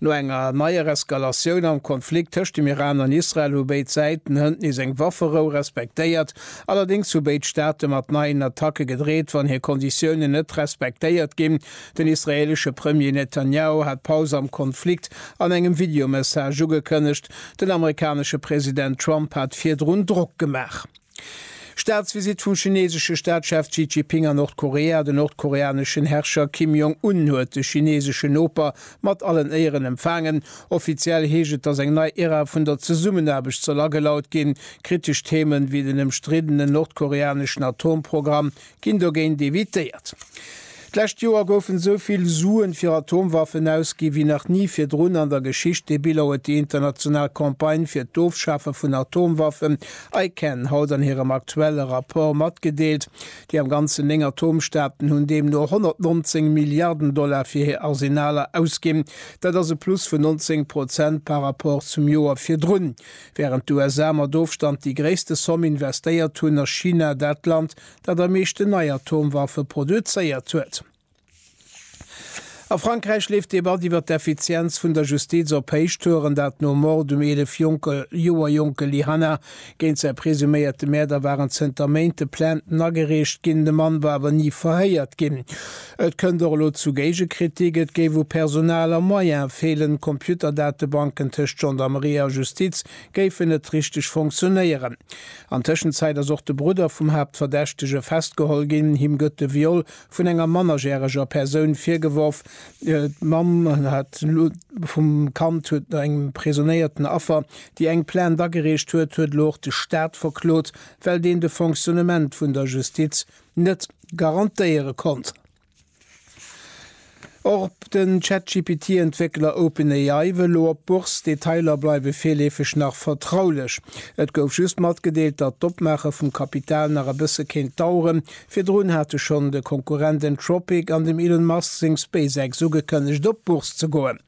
No enger neier Eskalatioun am Konflikt tëscht dem Iran an Israel hu béid Säiten hënt nees eng Wafferou respektéiert. Allerdéngs hu béid Staate mat neien Attacke gedreet, wann hir Konditiounen net respektéiert ginn. Den israeelesche Premier Netanjahu hat d'Paus am Konflikt an engem Videomessage ugekënnegt. Den amerikanesche President Trump hat virdrun Drock gemaach. Staatsvisitt vum chineesesche Staatschef Xi Jiping a Nordkorea Den nordkoreaneschen Herrscher Kim Jong Un huet de chineeseschen Noper mat allen Éieren empfaangen. Offiziell heescht et, datt eng nei Era vun der Zesummenaarbecht soll agelaut ginn. Kritesch Themen, wéi den ëmstriddenen nordkoreaneschen Atomprogramm, Ginn dogéint evitéiert. D'lescht Joer goufen esou vill Suen fir Atomwaffen ausgi wéi nach ni virdrun an der Geschicht. Dee Bilan huet déi international Campagne fir d'Ofschafe vun Atomwaffen, ICAN, haut an hirem aktuelle Rapport matgedeelt. Déi am Ganzen néng Atomstaaten hunn deemno 119 Milliarden Dollar fir hir Arsenaler ausginn. Dat ass e Plus vun 19 Prozent par Rapport zum Joer virdrun. Wärend d'USA mat Ofstand déi gréisste Somm investéiert hunn, ass China dat Land, dat am meeschten nei Atomwaffe produzéiert huet. A Frankräich leeft d'Debatt iwwer d'Effizienz vun der Justiz op Héichtouren, dat nom Mord um 11 Joer jonke Lyhanna. Géint säi presuméierte Mäerder waren zënter Méint de Plainten agereecht ginn, de Mann war awer ni verhéiert ginn. Et kënnt och elo zu Géigekritik, et géif u Personal a Moyen feelen, Computerdatebanken tëscht Gendarmerie a Justiz géifen net richteg funktionéieren. An Tëschenzäit ass och de Brudder vum Haaptverdächtege festgeholl ginn. Him gëtt de Viol vun enger mannerjäreger Persoun virgeworf. D'Mamm vum Kand huet engem presuméierten Affer, déi eng Plainte agereecht huet, huet elo och de Staat verklot, well deen de Fonctionnement vun der Justiz net garantéiere konnt. Och den ChatGPT-Entwéckler OpenAI wëll elo op d'Bourse. D'Detailer bleiwe virleefeg nach vertraulech. Et gouf just matgedeelt, datt d'Opmaache vum Kapital nach e bësse kéint daueren. Virdrun hate schonn de Konkurrent Anthropic an dem Elon Musk seng SpaceX ugekënnegt, op d'Bourse ze goen.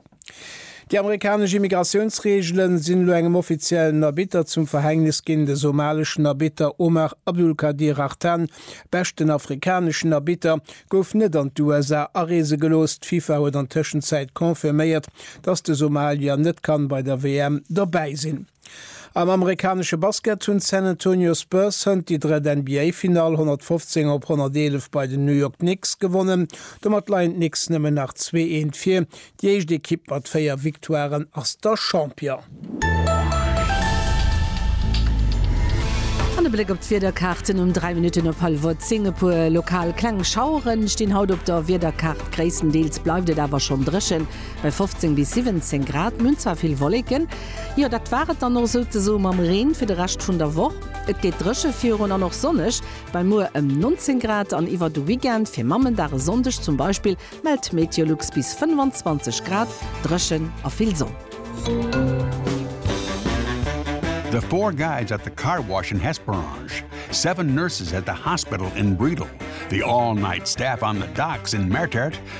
Déi amerikanesch Immigratiounsreegele sinn elo engem offiziellen Arbitter zum Verhängnis ginn, de somaleschen Arbitter Omar Abdulkadir Hartan, beschten afrikaneschen Arbitter, gouf net an d'USA areese gelooss. D'FIFA huet an Tëschenzäit confirméiert, datt de Somalier net kann bei der WM dobäi sinn. Am amerikanesche Basket hunn d'San Antonio Spurs hënt déi drëtt NBA-Finall 115 op 111 bei den New York Knicks gewonnen. Domat leien d'Knicks nëmmen nach zwee Eent vir. Déi éischt Ekipp mat véier Victoiren ass da Champion. An e Bléck op d'Wiederkaarten um 3 Minutten op hallwer 10. E puer lokal kleng Schauere stinn haut op der Wiederkaart, gréisstendeels bleift et awer schonn dréchen bei 15 bis 17 Grad. Mir hunn zwar vill Wolleken. Jo, dat war et dann och souzesoe mam Reen fir de Rescht vun der Woch. Et geet dréche virun an och sonneg bei muer ëm 19 Grad an iwwer de Weekend, fir Mammendag e Sonndeg zum Beispill, mellt Meteolux bis 25 Grad, dréchen a vill Sonn. The four guys at the car wash in Hesperange, seven nurses at the hospital in Bredal, the all-night staff on the docks in Mertert,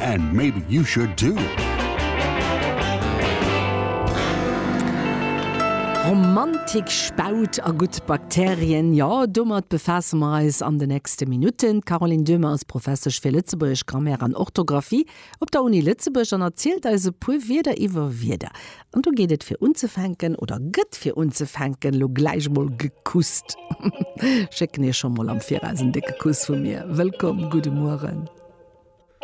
And maybe you should too. Romantik, Spaut a gutt Bakterien, jo domat befaasse mer eis an de nächste Minutten. D'Caroline Döhmer ass Professesch fir Lëtzebuergesch Grammaire an Orthografie op der Uni Lëtzebuerg an erzielt eis e puer Wierder iwwer Wierder. An do geet et fir unzefänken, oder gëtt fir unzefänken elo gläich mol gekusst. Schécken iech scho mol am Viraus en décke Kuss vu mir. Wëllkomm, gudde Mueren.